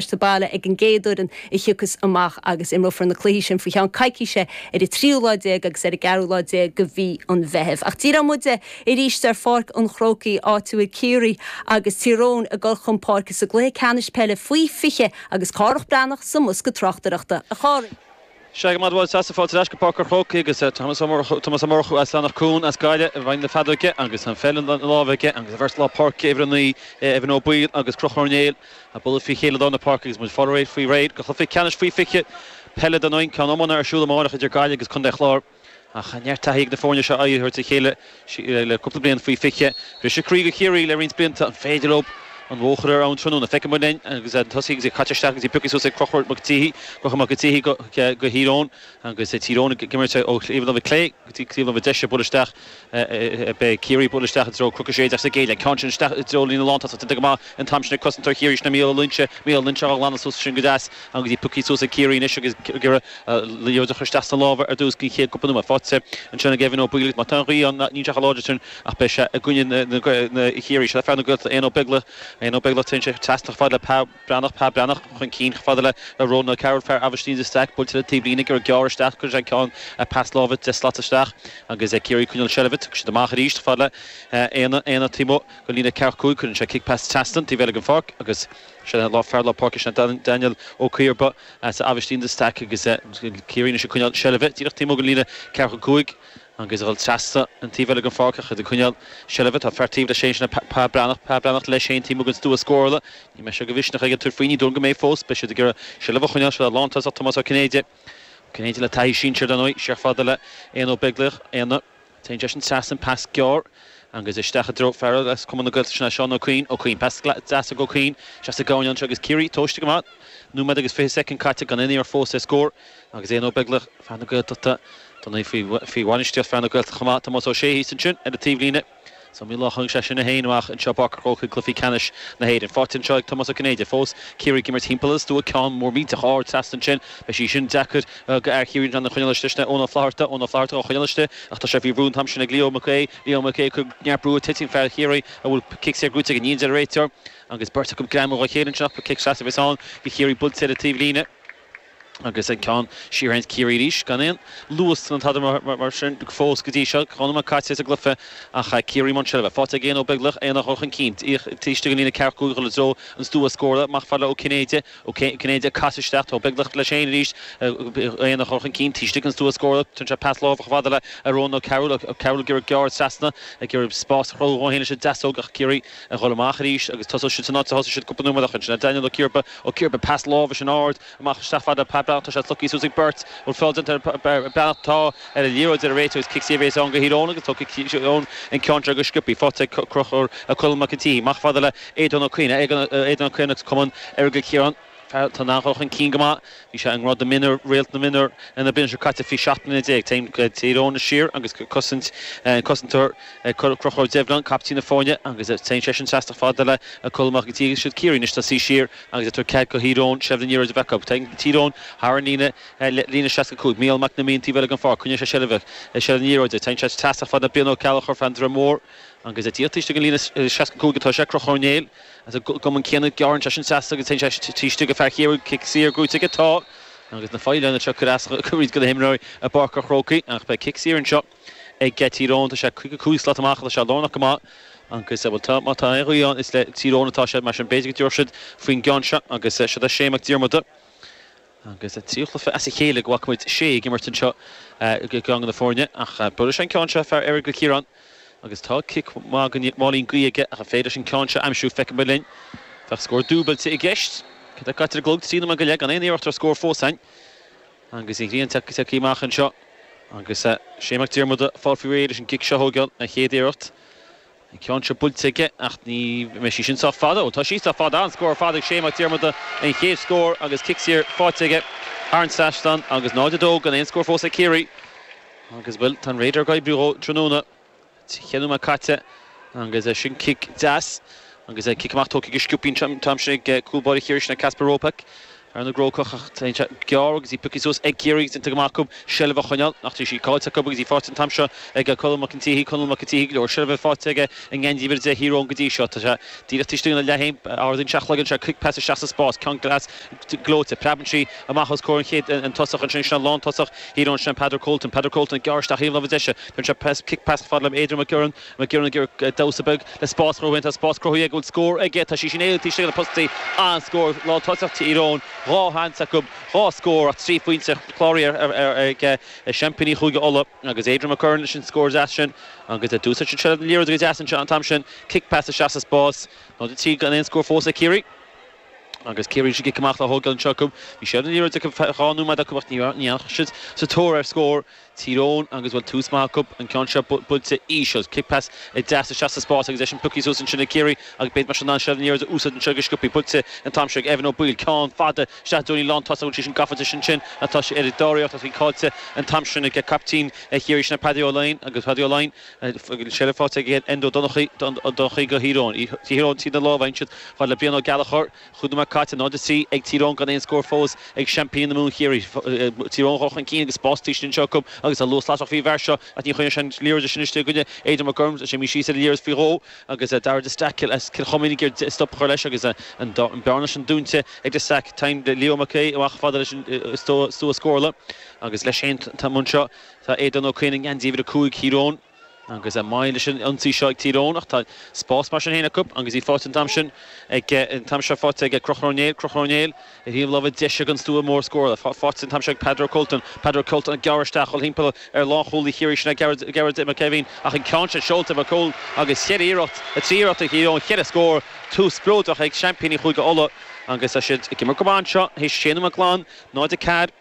sa bhaile ag an gcéad fhoireann a thiocfas amach agus imreofar na cluichí sin faoi cheann coicíse ar an tríú lá déag agus ar an gceathrú lá déag de mhí an Mheithimh. Ach díreoidh muide arís ar Pháirc an Chrócaigh, áit a bhfuil Ciarraí agus Tír Eoghain ag dul chun páirce sa gcluiche ceannais peile faoi 20 agus Cárthach Breathnach sa mbosca tráchtaireachta. A Chárthaigh! Sea go raibh maith agat, bhuel, Seasamh, Fáilte ar ais go Páirc an Chrócaigh agus Tomás Ó Murchú as Eanach Cuain as Gaillimh i bhfeighil na feadóige agus an pheil ina lámh aige agus an bheirt lár páirce uimhir a naoi Evan Ó Baoill agus Conchúr Ó Néill ag bualadh faoi chéile lár na páirce agus muid faoi réir do Chluiche Ceannais Faoi 20 Peile dar ndóigh an ceann iomána ar siúl amáireach idir Gaillimh agus Contae Chláir. Ach neart taithí ag na foirne seo aghaidh a thabhairt ar a chéile le cúpla bliain faoi fiche. Briseadh croí do Chiarraí le roinnt blianta, an féidir leo an bhóthar ar an tráthnóna feicfidh muid linn agus muid tosaithe agus í caite isteach agus í pioctha suas ag crochadh Mac Títhí go Mac an Tighe do Thír Eoghain agus Tír Eoghain ag imirt ó thaobh na láimhe clé go dtí taobh na láimhe deise buail isteach Beidh Ciarraí ag bualadh isteach i dtreo Chnoc a sé déag sa gcéad leath, an ceann sin isteach i dtreo líne lántosach. Déanta go maith an t-am sin ag cosantóir Chiarraí sin é Mícheál Ó Loingsigh, Mícheál Ó Loingsigh á ghlanadh suas ansin go deas agus í pioctha suas ag Ciarraí anois agus ag iarraidh liathróid a chur isteach sna lámha ar dtús den chéad cúpla nóiméad. Faighte ansin ag Evan Ó Baoill agus má tá an ghaoth ann níl sé chomh láidir sin ach beidh sé i gcoinne Chiarraí. Seo fear na Gaeltachta, Aodhna Ó Beaglaoich. Aodhna Ó Beaglaoich, téann sé trasna chomh fada le Breathnach, Pa Breathnach, chun cinn, fada le Rónán Ó Cearúill, fear Aibhistín de Staic, buailte le taobh líne, gearradh gearr isteach, cuireann sé an pas láimhe deich slat isteach agus Ciarraí ag coinneáil seilbhe, tiocfaidh siad amach arís, fada le Aodhna, Aodhna taobh amuigh den líne ceathracha cúig, cuireann sé cic pas trasna an taobh eile den pháirc agus sin é, fear lár páirce, sin é Daniel Ó Ciarba as Aibhistín de Staic agus Ciarraí anois ag coinneáil seilbhe, díreach taobh amuigh den líne ceathracha cúig, Ag iarraidh a dhul trasna an taobh eile den pháirc ach iad ag coinneáil seilbhe. Tá fear taobh leis féin, sin é Pa Breathnach. Pa Breathnach, leis féin, taobh amuigh den stua scórála. An mbeidh sé de mhisneach aige tabhairt faoi, ní dóigh go mbeidh fós. Beidh siad ag iarraidh seilbhe a choinneáil, seo é lántosach Tomás Ó Cinnéide. Ó Cinnéide le taithí sinsir dar ndóigh, siar chomh fada le Aodhna Ó Beaglaoich. Aodhna, téann seisean trasna an pas gearr an gaoth isteach i dtreo fear as Cumann na Gaeltachta, sin é Seán Ó Cuinn. Ó Cuinn, pas deas ag Ó Cuinn, seasamh gamhain ann, seo agus Ciarraí tomhaiste go maith. Nóiméad agus fiche soicind caite, gan aon iarracht fós ar scór. Agus Aodhna Ó Beaglaoich, fear na Gaeltachta, dar ndóigh faoi bhainistíocht fear na Gaeltachta chomh maith, Tomás Ó Sé thíos ansin ar an taobhlíne. Is iomaí lá a chaith seisean é féin amuigh anseo i bPáirc a' Chrócaigh i gCluichí Ceannais na hÉireann. Faighte anseo ag Tomás Ó Cinnéide fós. Ciarraí ag imirt thimpeall ar an stua, ceann mór millteach ard trasna ansin. Beidh sí sin deacair do fhear Chiarraí í a choinneáil istigh, sin é Eoin Ó Flatharta. Eoin Ó Flatharta dhá coinneáil istigh ach tá sé faoi bhrú an t-am sin ag Leo Mac Aoidh. Leo Mac Aoidh ag cur neart brú air. Titeann fear Chiarraí, an bhfuil cic saor gnóite aige. Níl a deir an réiteoir agus beirt acu ag greamú dhá chéile ansin ach ba cic sleasa a bheas ann do Chiarraí buailte ar an taobhlíne. Agus an ceann siar fhéin Ciarraí arís gan aon luas ná tada mar sin fós go dtí seo. Dhá nóiméad caite sa gcluiche ach Ciarraí i mbun seilbhe, faighte ag Aodhna Ó Beaglaoich, Aodhna a chur chun cinn taobh istigh den líne ceathracha cúig a dhul i dtreo an stua scórála amach chomh fada le Ó Cinnéide. Ó Cinnéide ag casadh isteach tá Ó Beaglaoich leis fhéin arís. Aodhna a chur chun cinn taobh istigh den stua scórála. Tugann sé pas láimhe amach chomh fada le Rónán Ó Cearúill. Ó Cearúill ag iarraidh gearradh trasna ag iarraidh spás a chruthú dhó fhéin leis an deasóg ach Ciarraí Ag dhul amach arís agus tosaigh siad san áit a thosaigh siad cúpla nóiméad ó shin ansin. Daniel Ó Ciarba, Ó Ciarba, pas láimhe sin ard amach isteach fada Pa Breathnach tá sé slogtha suas ag beirt an bhfuil feall déanta air ar an mBreathnach tá ar an liathróid a deir an réiteoir cic saor a bhéas ann go Thír Eoghain agus tógann sé an ceann seo go sciobtha faighte ag Crochúr ag Conall Mac an tSíthigh. Amach fada le Aodhán Ó Coinne, Aodhán Ó Coinne, as Cumann Aireagal Chiaráin. Tá an dá chur chun cinn go maith. Bhí sé i ngreim do mhionúir, réalt na mionúr na bliana seo caite faoi seacht mbliana déag. Téann Tír Eoghain siar agus ag cosaint an cosantóir Crochúr Ó Doibhlin, caiptín na foirne agus téann seisean trasna fada le Conall Mac an tSíthigh agus siad Ciarraí anois le suí siar agus ag tabhairt cead go Thír Eoghain seilbh na liathróide a bheith acu. Téann Tír Eoghain thar an líne, líne a seasca cúig. Mícheál Mac Con Mí an taobh eile den pháirc, coinníonn sé seilbh seilbh na liathróide. Téann sé trasna fada le Brian Ó Gallchóir fear an Droim Mhór agus díreach taobh istigh den líne seasca cúig atá sé. Crochúr Ó Néill as an gcumann céanna. Gearrann seisean trasna agus téann sé taobh istigh go fear Chiarraí. Cic saor gnóthaithe atá agus na faoileáin anseo ag cur as roinnt go na himreoirí i bPáirc a' Chrócaigh ach beidh cic saor anseo ag Tír Eoghain. Tá sé caoga cúig slat amach. Tá sé lárnach go maith agus bhuel tá má tá aon ghaoth ann is le Tír Eoghain atá sé mar sin b'fhéidir go dtabharfaidh siad faoin gceann seo agus siod é Shay Mac Diarmada. Agus an tríú cluiche as a chéile go bhfaca muid Shay ag imirt anseo i gceann de na foirne ach buailfidh seisean an ceann seo, fear Aireagal Chiaráin agus tá cic maith go Máilín Gaoth aige ach an féidir leis an ceann seo a aimsiú, feicfidh muid linn. Bheadh scór dúbailte i gceist. Céard atá caite ar an gclog? Trí nóiméad go leith gan aon iarracht ar scór fós a'inn agus an ghrian ag tíocht amach anseo agus Shay Mac Diarmada ag fáil faoi réir leis an gcic seo a thóigeáil, a chéad iarracht. An ceann seo buailte aige ach ní bheidh sí sin sách fada. Ó tá sí sách fada. An-scór ar fad ag Shay Mac Diarmada, an chéad scór agus cic saor faighte aige thar an trasnán agus 0-2 gan aon scór fós ag Ciarraí. Agus, bhuel, tá an radar ag oibriú dhó tráthnóna. Ceithre nóiméad caite agus sin cic deas agus cic amach tógtha go sciobtha an t-am sin ag cúl báire Chiarraí sin, Kacper Robak. ar an gCrócach ach téann sé gearr agus í pioctha suas ag Ciarraí agus déanta go maith acu seilbh a choinneáil ach tá sí caillte acu agus í faighte an t-am seo ag Conall Mac an tSíthigh Conall Mac an tSíthigh go leor seilbhe faighte aige i ngeansaí uimhir a deich Thír Eoghain go dtí seo tá sé díreach taobh istigh ina leath féin ardaíonn sé a chloigeann cic pas isteach sa spás ceann deas gleoite preabann sí amach os comhair an chéad an tosach ansin sin an lán tosach Thír Eoghain sin Peadar Colton Peadar Colton gearrann isteach ar thaobh na láimhe deise téann sé tras cic pas fada le Adrian McGurren Mac Giolla Uidhir, Damhsa beag le spás a chruthú dhó fhéin. Tá spás cruthaithe aige an bhfuil scór aige. Tá sí sin éalaithe taobh istigh de na postaí. An-scór. Lántosach Tír Eoghain. Dhá sheans acu. Dhá scór ach trí phointe ar an gclár ag seaimpíní Chúige Uladh. Agus Adrian McGurren leis an scór deas sin. Agus d'úsáid siad seilbh na liathróide go deas an t-am sin. Cic pas isteach sa spás. 0-3 gan aon scór fós ag Ciarraí. Agus Ciarraí leis an gcic amach á thógáil anseo acu. Bhí seilbh na liathróide acu dhá nóiméad ó shin ach ní dheachaigh siad sa tóir ar scór. Tír Eoghain agus bhfuil tús maith acu an ceann seo buailte íseal. Kick pass deas isteach sa spás agus é sin piocthaí suas ansin ag Ciarraí agus b'fhéidir mar sin an seilbh níor fhada úsáid anseo go sciopthaí buailte an t-am seo ag Evan Ó Baoill. Ceann fada isteach don líne lántosaigh bhfuil sé sin gafa isteach ansin ach tá sé ar a dáréag tosaigh faighte an t-am sin ag caiptín Chiarraí sin Paddy Ó Laighin agus Paddy Ó Laighin an tseilbh faighte ag Enda Ó Donnchaidh go Tír Eoghain. Tír Eoghain trína lámha ansin fad le Brian Ó Gallchóir. Cúig nóiméad caite, 0-3 ag Tír Eoghain gan aon scór fós ag seaimpíní na Mumhan, Ciarraí. Tír Eoghain a chur chun cinn agus spás tríd sin anseo acu agus an luas lasrach faoin bhfear seo ach ní chuireann sé an liathróid sin isteach ag éinne. Aidan McGurn, preabann sé an liathróid faoi dhó agus Darragh de Staic as Cill Chuimín ag iarraidh stop a chur leis agus an bearna sin dúinte ag de Staic. Tagann Leo Mac Aoidh amach chomh fada leis an stua scórála agus leis an t-am seo tá Aodán Ó Coinn i ngeansaí uimhir a cúig Thír Eoghain. Agus a mbaineann leis an ionsaí seo ag Tír Eoghain, ach tá spás mar sin féin acu agus í faighte an t-am sin ag, an t-am seo faighte ag Conchúr Ó Néill, Conchúr Ó Néill ar thaobh láimhe deise den stua mór scórála, faighte an t-am seo ag Peadar Colton, Peadar Colton ag gearradh isteach ag dhul thimpeall ar lánchúlaí Chiarraí, sin é Gearóid, Gearóid Mac Eibhín ach an ceann sin seolta ag Colton agus cheithre iarracht, trí iarracht ag Tír Eoghain, cheithre scór, tús spleodrach ag seaimpíní Chúige Uladh agus tá siad ag imirt go maith anseo théis sé nóiméad glan, 0, 4.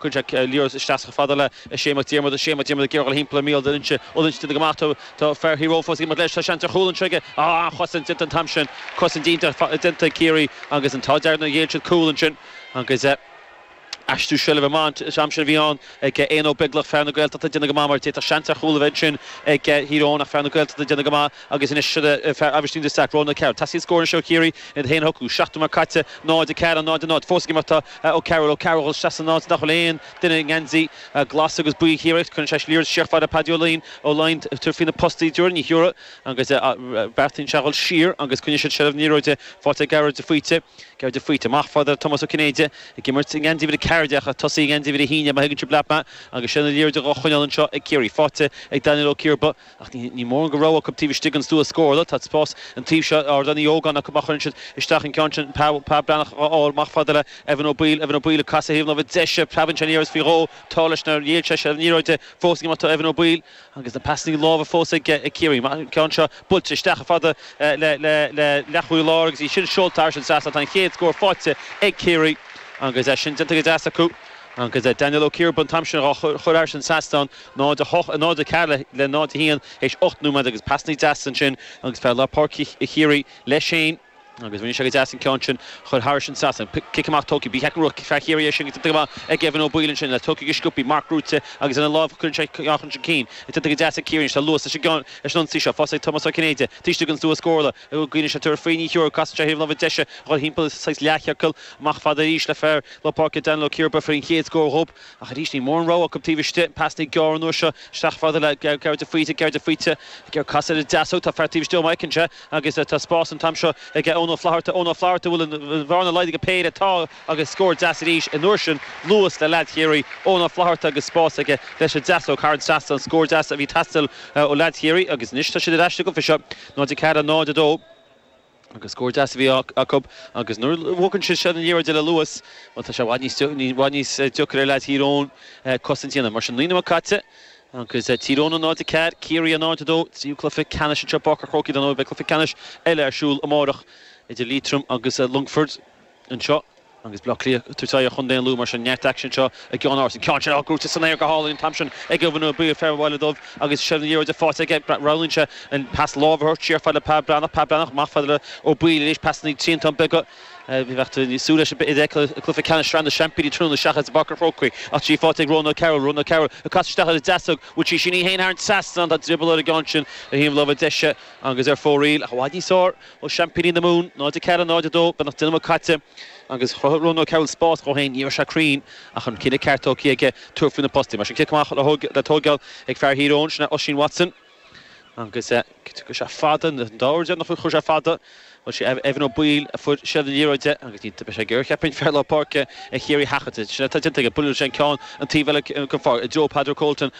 Cuireann sé liathróid isteach chomh fada le Shea Mac Diarmada. Shea Mac Diarmada ag iarraidh a dhul thimpeall ar Mícheál Ó Loingsigh. Ó Loingsigh ag déanamh go maith. Tá fear Thír Eoghain fós ag imeacht leis. Tá seans ar chúl anseo aige. Á! An-chosaint déanta an t-am sin. Cosaint iontach déanta ag Ciarraí agus an t-ádh dearg nár ghéill siad cúl ansin. Agus aistriú seilbhe maith an t-am sin a bhí ann ag Aodhna Ó Beaglaoich, fear na Gaeltachta ag déanamh go maith mar d'fhéadfadh seans ar chúl a bheith ansin ag Thír Eoghain ach fear na Gaeltachta ag déanamh go maith. Agus anois seo é, fear Aibhistín de Staic, Rónán Ó Cearúil. Teastaíonn scór anseo ó Chiarraí le iad féin a shocrú. Seacht nóiméad caite, 0, 4, 0, 0. Fós ag imeacht atá Ó Cearúil. Ó Cearúil, seasann ann is nach bhfuil aon duine i ngeansaí glas agus buí Chiarraí. Cuireann sé liathróid isteach fad le Paidí Ó Laighin. Ó Laighin ag tabhairt faoi na postaí de réir an ghiúire agus beartaíonn sé a dhul siar agus coinníonn siad seilbh na liathróide. Faighte ag Gearóid de Faoite. Gearóid de Faoite, amach fad le Tomás Ó Cinnéide. Ag imirt i ngeansaí uimhir a ceathair déag ach ag tosaí i ngeansaí uimhir a haon déag má thuigeann sibh leat mé. Agus sin an liathróid a dhá choinneáil anseo ag Ciarraí. Faighte ag Daniel Ó Ciarba. Ach níl mórán de rogha acu taobh istigh den stua scórála. Tá spás an taoibh seo ar Ardán Uí Ógáin acu má chuireann siad isteach an ceann sin. Pa, Pa Breathnach dhá fháil amach fad le Evan Ó Baoill, Evan Ó Baoill ag casadh thaobh an láimhe deise. Preabann sé an liathróid faoi dhó. Tá leis nár dhíol sé an liathróid de. Fós ag imeacht atá Evan Ó Baoill. Agus na pasannaí láimhe fós ag Ciarraí. Maith an ceann seo. Buailte isteach chomh fada le leathchúlaí láir agus í sin seolta thairis an trasnán. Tá an chéad scór faighte ag Ciarraí agus sin déanta go deas acu. Agus Daniel Ó Ciarba an t-am sin dhá chur thairis an trasnán. 0, 8, a 0, 4 le 0, 1, théis ocht nóiméad agus pasannaí deasa ansin agus fear lár páirc Chiarraí leis féin agus rinne sé go deas an ceann sin chur thairis an trasnán. Cic amach tógtha bí heacan ruathach fear Chiarraí é sin go dtitfidh amach ag Evan Ó Baoill ansin le tógtha go sciopthaí marc buaite agus lena láimh cuireann sé amach chun cinn ag titim go deas ag Ciarraí anois tá luas leis an gceann leis an ionsaí seo fós ag Tomás Ó Cinnéide taobh istigh den stua scórála cuimhníonn sé tabhairt faoi Ní Cheoil casann sé thaobh láimhe deise ag dhul thimpeall saghas leathchiorcal amach fada arís le fear lár páirce Daniel Ó Ciarba a fuair an chéad scór dhóibh Ach arís níl mórán rogha acu taobh istigh. Pas níos gearr an uair seo isteach fad le Gearóid de Faoite. Gearóid de Faoite ag cur casadh ar an deasóg. Tá fear taobh istigh dhó má fheiceann sé agus tá spás an t-am seo ag Eoin Ó Flatharta. Eoin Ó Flatharta a bhfuil an bhearna laghdaithe go péire. Tá agus scór deas arís an uair sin. Luas le leaid Chiarraí. Eoin Ó Flatharta agus spás aige leis an deasóg thar an trasnán. Scór deas a bhí ag teastáil ó leaid Chiarraí agus anois tá siad ar ais sa gcluiche seo. 0-4, 0-2. Agus scór deas a bhí acu agus nuair a bhogann siad seo an liathróid le luas, bhuel tá sé i bhfad níos, i bhfad níos deacra ar leaids Thír Eoghain cosaint a dhéanamh. Mar sin, naoi nóiméad caite agus Tír Eoghain 0, 4, Ciarraí 0, 2, tríú cluiche ceannais anseo i bPáirc a' Chrócaigh dar ndóigh. Beidh cluiche ceannais eile ar siúl amárach idir Liatroim agus an Longfort. anseo agus Bleá Cliath ag tabhairt faoi Chondae an Lú mar sin neart aicsin anseo i gCeannáras an ceann sin crúite san aer go hálainn an t-am sin ag Evan Ó Baoill fear an Bhaile Dhuibh agus seilbh na liathróide faighte aige roghnaíonn sé an pas láimhe a thabhairt siar fad le Pa Breathnach Pa Breathnach amach fad le Ó Baoill arís pasanna triantán beaga bheadh tú ag súil leis b'fhéidir a fheiceáil i gcluiche ceannais sraithe na seaimpíní tráthnóna seachas i bPáirc an Chrócaigh ach í faighte ag Rónán Ó Cearbhaill Rónán Ó Cearbhaill ag casadh isteach ar an deasóg bhuail sí sin í féin thar an trasnán tá drioball ar an gceann sin ar thaobh na láimhe deise agus ar fóraoil ach i bhfad níos fearr Ó sheaimpíní na Mumhan, 0, 4, 0, 2, beagnach deich nóiméad caite agus chruthaigh Rónán Ó Cearbhaill spás dhó féin. Ní raibh sé cruinn ach an cinneadh ceart tógtha aige tabhairt faoi na postaí. Mar sin cic amach le tóigeáil ag fear Thír Eoghain, sin é Oisín Watson agus chuir sé fada, an dá uair deireanach a chuir sé fada, bhuel sé Evan Ó Baoill a fuair seilbh na liathróide agus ní, beidh sé ag iarraidh cheapfainn fear lár páirce Chiarraí a sheachaint. Sin é atá déanta aige, buaileann sé an ceann an taobh eile den pháirc i dtreo Peadar Colton.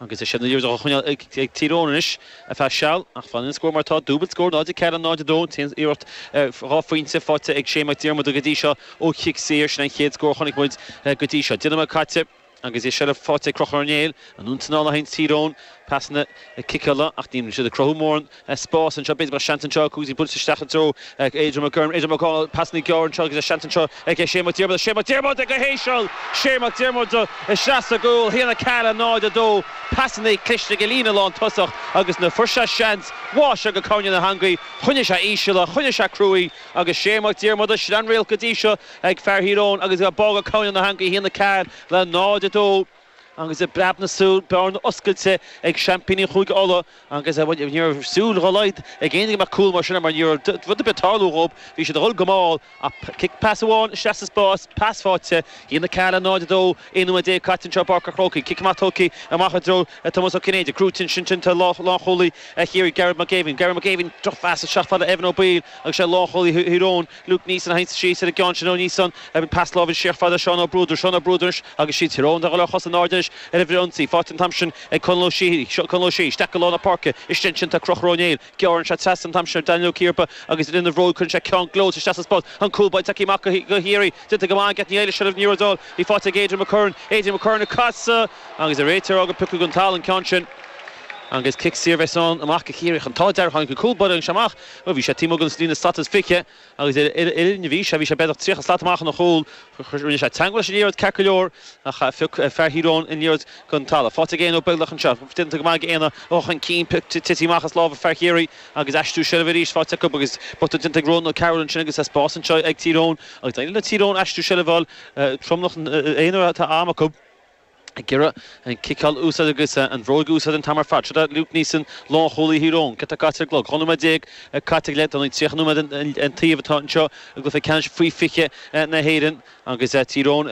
Agus é sin ag iarraidh a choinneáil ag Tír Eoghain anois, ar feadh seal, ach fanann an scór mar atá, dúbailt scór, 0-4 nó 0-2, téann an iarracht ar dhá phointe faighte ag Shea Mac Diarmada go dtí seo ó chic saor sin an chéad scór a chonaic muid go dtí seo. Deich nóiméad caite agus é seilbh faighte ag Conchúr Ó Néill, in ann anáil a tharraingt Tír Eoghain, pasanna ciceála ach níl siad ag cruthú mórán Tá spás anseo, b'fhéidir go mbeadh seans anseo, tá sí buailte isteach i dtreo Adrian McGurren, Adrian McGurren, pasanna gearra anseo agus seans anseo ag Shea Mac Diarmada, Shea Mac Diarmada go híseal! Shea Mac Diarmada isteach sa gcúl, 1 4 0 2 Pasanna cliste ag an líne lán tosach agus nuair fuair sé seans bháigh sé go cúinne na heangaí, choinnigh sé íseal é, choinnigh sé cruaidh agus Shea Mac Diarmada sin an réalta go dtí seo ag fear Thír Eoghain agus bá go cúinne na heangaí, 1 4 le 0 2. Agus i bpreab na súl bearna oscailte ag seaimpíní Chúige Uladh agus bhuel ní raibh súil dhá laghad ag éinne go mbeadh cúl mar sin mar ní raibh rud ar bith tarlú dhóib bhí siad a dhul go mall ach cic pas amháin isteach sa spás pas faighte 1-4 le 0-2 11 nóiméad caite anseo i bPáirc a' Chrócaigh cic amach tógtha amach i dtreo Tomás Ó Cinnéide crúite ansin sin é lánchúlaí Chiarraí Gearóid Mac Eimhín Gearóid Mac Eimhín drochphas isteach fad le Evan Ó Baoill agus sé lánchúlaí Thír Eoghain Luke Neeson a sheinnt síos ar an gceann sin ó Neeson, an pas láimhe sách fada, Seán Ó Bruadair, Seán Ó Bruadair anois agus siad Tír Eoghain a dhul ar chosa in airde anois ar an bhfrithionsaí, faighte an t-am sin ag Conall Ó Síoth, Seán Conall Ó Síoth, isteach go lár na páirce, istigh ansin tá Crochur Ó Néill, gearrann sé trasna an t-am sin ar Daniel Ó Ciarba agus rinne an bhróg, cuireann sé ceann gleoite isteach sa spás, an cúl báire tagtha amach go h-eírí, déanta go maith age Atney Eilish oraibh, ní raibh dul, í faighte ag Adrian McGurren, Adrian McGurren a casadh agus deir an réiteoir gur piocadh gon talamh an ceann sin agus cic saor a bheas ann amach go Chiarraí ach, an t-ádh dearg tháinig an cúl báire amach. Bhuel, bhí sé taobh amuigh den líne slat is fiche agus ar an uillinn a bhí sé, bhí sé b'fhéidir tríocha slat amach óna chúl. Rinne sé teangmháil leis an liathróid ceart go leor ach phioc fear Thír Eoghain an liathróid den talamh. Faighte ag Aodhna Ó Beaglaoich anseo. Déanta go maith ag Aodhna a dhul chun cinn, tite amach as lámha fear Chiarraí agus aistriú seilbhe arís faighte acu agus botún déanta ag Ronan O'Carroll ansin agus tá spás anseo ag Tír Eoghain agus d'éirigh le Tír Eoghain aistriú seilbhe a fháil. Tromlach aonair atá am acu. ag iarraidh an ciceáil a úsáid agus an bhróig a úsáid an t-am ar fad. Seo duit Luke Neeson, lánchúlaí Thír Eoghain. Giota caite ar an gclog. Dhá nóiméad déag caite go leith. Dar ndóigh 30 nóiméad an taobh atá anseo i gcluiche ceannais faoi 20 na hÉireann agus Tír Eoghain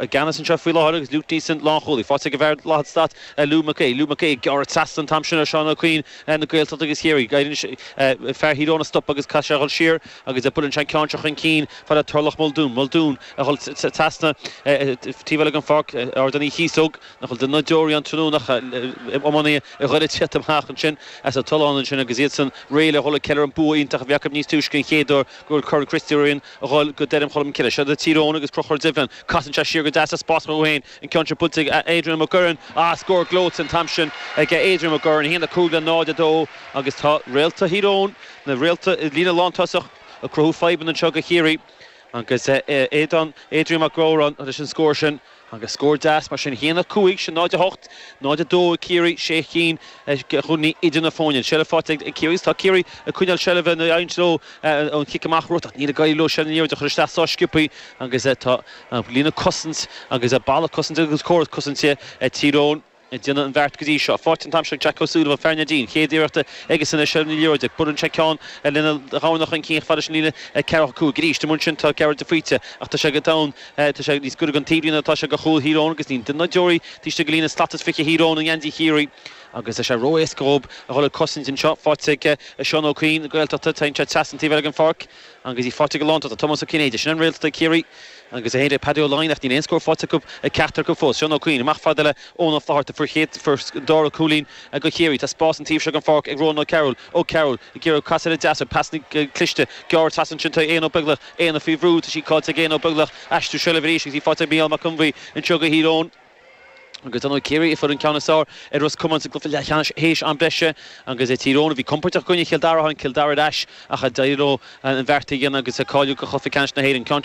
i gceannas anseo faoi láthair agus Luke Neeson, lánchúlaí, faighte ag an bhfear lathaí stait, Lugh McKay. Lugh McKay ag gearradh trasna an t-am sin ar Seán Ó Cuinn na Gaeltachta agus Chiarraí. Éiríonn leis fear Thír Eoghain a stop agus caithfidh sé a dhul siar. Agus buaileann sé an ceann seo chun cinn fad le Turlough Muldoon, Muldoon, a dhul trasna taobh eile den pháirc, Ardán Uí Chíosóg, nach bhfuil duine ná deoraí ann tráthnóna ach iománaithe Dhoire a' tíocht amach ansin as a' tollán ansin agus iadsan réidh le dhul a' ceiliúr an bua iontach a bhí acu níos túisce an chéad uair go bhfuil Corn Christy Ring a dhul go Doire Cholm Cille. Siad a' Tír Eoghain agus Crochúr Duibhlinn. Casann sé siar go deas sa spás chucu féin, an ceann sin buailte ag Adrian McGurren. Ah scór gleoite an t-am sin ag Adrian McGurren, 1-5 le 0-2 agus tá Réalta Thír Eoghain, Na réalta i líne lántosach ag cruthú fadhbanna anseo go Chiarraí agus Aodán, Adrian, Mac Gaughráin leis an scór sin agus scór deas mar sin 1-5, sin 0-8, 0-2 ag Ciarraí, sé cinn de chúilíní idir na foirne. An seilbh faighte ag Ciarraí agus tá Ciarraí ag coinneáil seilbhe nuair a éiríonn leo an cic amach a thabhairt ach níl ag éirí leo ansin an liathróid a chur isteach sách sciobthaí agus tá líne cosanta agus balla cosanta agus córas cosanta Tír Eoghain Déanamh an bheart go dtí seo. Faighte an t-am sin ag Jack Ó Súilleabháin, fear Neidín, chéad iarracht aige san Iseal ní leor duit. Buaileann sé ceann lena dhorn chun cinn ach fad leis an líne 4-5. Arís, taobh amuigh ansin tá Gearóid de Faoite ach tá sé go domhain, tá sé níos giorra gan taobhlíne ná tá sé go chúil Thír Eoghain agus níl duine ná deoraí taobh istigh de líne slat is fiche Thír Eoghain i ngeansaí Chiarraí. Agus tá sé ró-éasca dhób a dhul ag cosaint anseo. Faighte ag Seán Ó Cuinn na Gaeltachta, téann sé trasna an taobh eile den pháirc. Agus í faighte ag an lántosach Tomás Ó Cinnéide. Sin an réalt atá ag Ciarraí agus é héin agus Paddy Ó Laighin ach níl aon scór faighte acu, ag ceachtar acu fós. Seán Ó Cuinn, amach fad le Eoin Ó Flaithearta, fear a fuair an dara cúilín go Chiarraí. Tá spás an taobh seo den pháirc ag Rónán Ó Cearúil. Ó Cearúil, ag iarraidh casadh ar deis, pasanna cliste, ag gearradh trasna ansin tá Aodhna Ó Beaglaoich. Aodhna faoi bhrú, tá sí cáillte ag Aodhna Ó Beaglaoich. Aistriú seilbh arís agus í faighte ag Mícheál Mac Conbhuí. Anseo go Thír Eoghain. Agus d'imir Ciarraí a fuair an ceann is fearr ar Ros Comáin sa gcluiche leathcheannais théis am breise agus sé Tír Eoghain a bhí compordach i gcoinne Chill Dara. Tháinig Cill Dara ar ais ach d'éirigh leo an beart a dhéanamh agus cáiliú do Chluiche Ceannais na hÉireann.